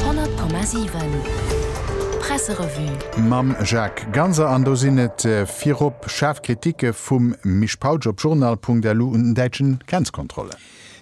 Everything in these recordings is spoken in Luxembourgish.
100,7 Presserevue. Mam Jacques Ganser an do sinn et virop schaarf Kritike vum Misch Pautsch op journal.lu un den däitschen Grenzkontrollen.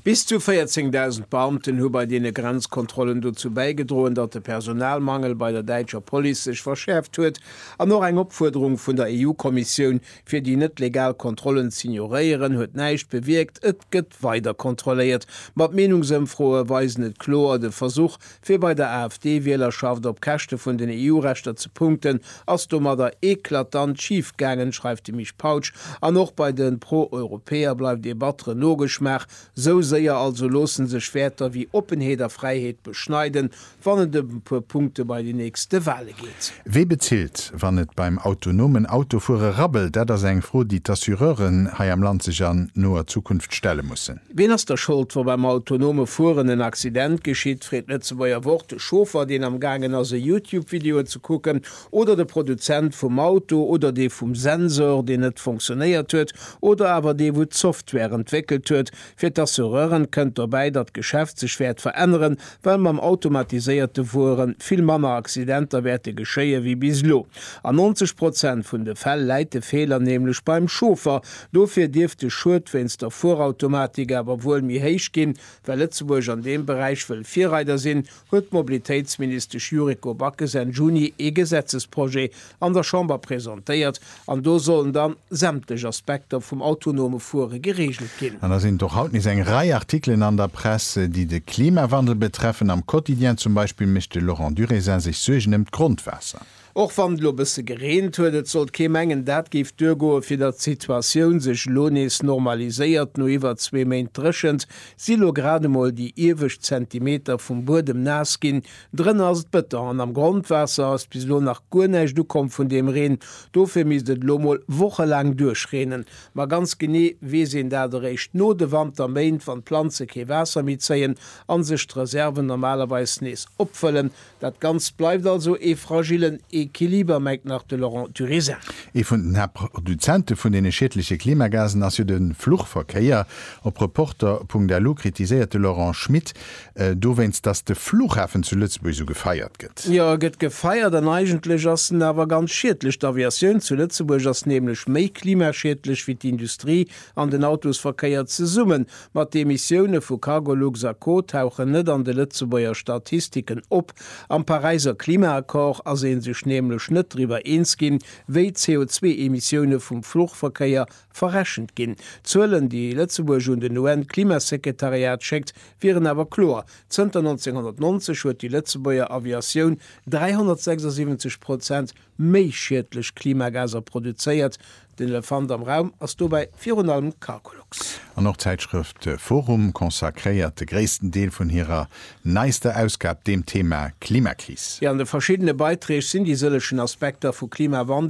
Bis zu 14.000 Beamten hu bei deene Grenzkontrollen dozou bäigedroen, datt de Personalmangel bei der däitscher Police sech verschäerft huet an och eng Opfuerderung vun der EU-Kommissioun Fir déi net legal Kontrollen z'ignoréieren, huet näischt bewierkt, et gëtt weider kontrolléiert. Ma d'Meenungsëmfroe weisen et kloer, de Versuch, fir bei der AfD-Wielerschaft op Käschte vun den EU-Rechter ze punkten, ass domadder eklatant schif gaangen, schreift de Mich Pautsch. An och bei de Pro-Europäer bleift ee batteren Nogeschmaach. Sou séier also loossen sech Wäerter wéi Oppenheet a Fräiheet beschneiden, wann et ëm e puer Punkte bei den nächste Wale geet. Wie bezilt, wann et beim autonomen Autofuere rabbelt? Dat ass eng Fro, déi d'Assureuren hei am Land sech an noer Zukunft stelle mussen. Wien ass da Schold, wa beim autonome Fueren en Accident geschitt? freet d'Lëtzebuerger Wort de Chauffer, deen am gaangen ass, e Youtube-Video ze kucken, oder de Produzent vum Auto, oder dee vum Sensor, deen net fonctionéiert huet, oder awer dee, wou d'Software entwéckelt huet, Fir d'Assureuren kënnt dobäi, datt d'Geschäft sech wäert veränneren, well mam automatiséierte Fuere vill manner Accidenter wäerte geschéie wéi bis elo. An 90 Prozent vun de Fäll läit de Feeler nämlech beim Chauffer. Dofir dierft de Schued wéinst der Fuerautomatik awer wuel méi héich ginn. Well Lëtzebuerg an deem Beräich wëll Virreider sinn, huet d'Mobilitéitsministesch Yuriko Backes Enn Juni ee Gesetzesprojet an der Chamber presentéiert, an do sollen dann sämtlech Aspekter vum autonome Fuere gereegelt ginn. An da sinn et och haut nees eng Rei Artikelen an der Press, déi de Klimawandel betreffen. Am Quotidien zum Beispill mécht de Laurent Durésin sech Suergen ëm d'Grondwaasser. Och wann et elo e bësse gereent huet, et sollt kee mengen, dat géif duergoen. Fir datt d'Situatioun sech elo nees normaliséiert, no iwwer zwee Méint Dréchent, si lo grad emol déi iewescht Zentimeter vum Buedem naass ginn. Drënner ass et bëtter an am Grondwaasser ass bis elo nach guer näischt ukomm vun deem Reen. Dofir misst et elo mol wochelaang duerchreenen. Ma ganz genee weess een dat eréischt no de Wanterméint, wann d'Planze kee Waasser méi zéien a sech d'Reserven normalerweis nees opfëllen, Dat Ganzt bleift also ee fragillen Equiliber, mengt nach de Laurent Turisin. Ee vun den Haaptproduzente vun deene schiedleche Klimagasen ass jo de Fluchverkéier. Op Reporter Punkt lu kritiséiert de Laurent Schmit dowéinst, datt de Fluchhafen zu Lëtzebuerg esou gefeiert gëtt. Jo, e gëtt gefeiert an eigentlech ass en awer ganz schiedlech. D'Aviatioun zu Lëtzebuerg ass nämlech méi klimaschiedlech wéi d'Industrie an den Autosverkéier zesummen. Ma d'Emissioune vu Cargolux a Co tauchen net an de Lëtzebuerger Statistiken op. Am Paräiser Klimaaccord ass ee sech nämlech net driwwer eens ginn, wéi d'CO2-Emissioune vum Fluchverkéier verrechent ginn. D'Zuelen, déi Lëtzebuerg un den UN-Klimasekretariat schéckt, wieren awer kloer, Zënter 1990 huet déi Lëtzebuerger Aviatioun 376 Prozent méi schiedlech Klimagaser produzéiert. Den Elefant am Raum ass dobäi virun allem d'Cargolux. An och d'Zäitschrëft forum consacréiert de gréissten Deel vun hirer neister Ausgab deem Thema Klimakris. An de verschiddene Beiträg sinn déi sëllechen Aspekter vu Klimawandel,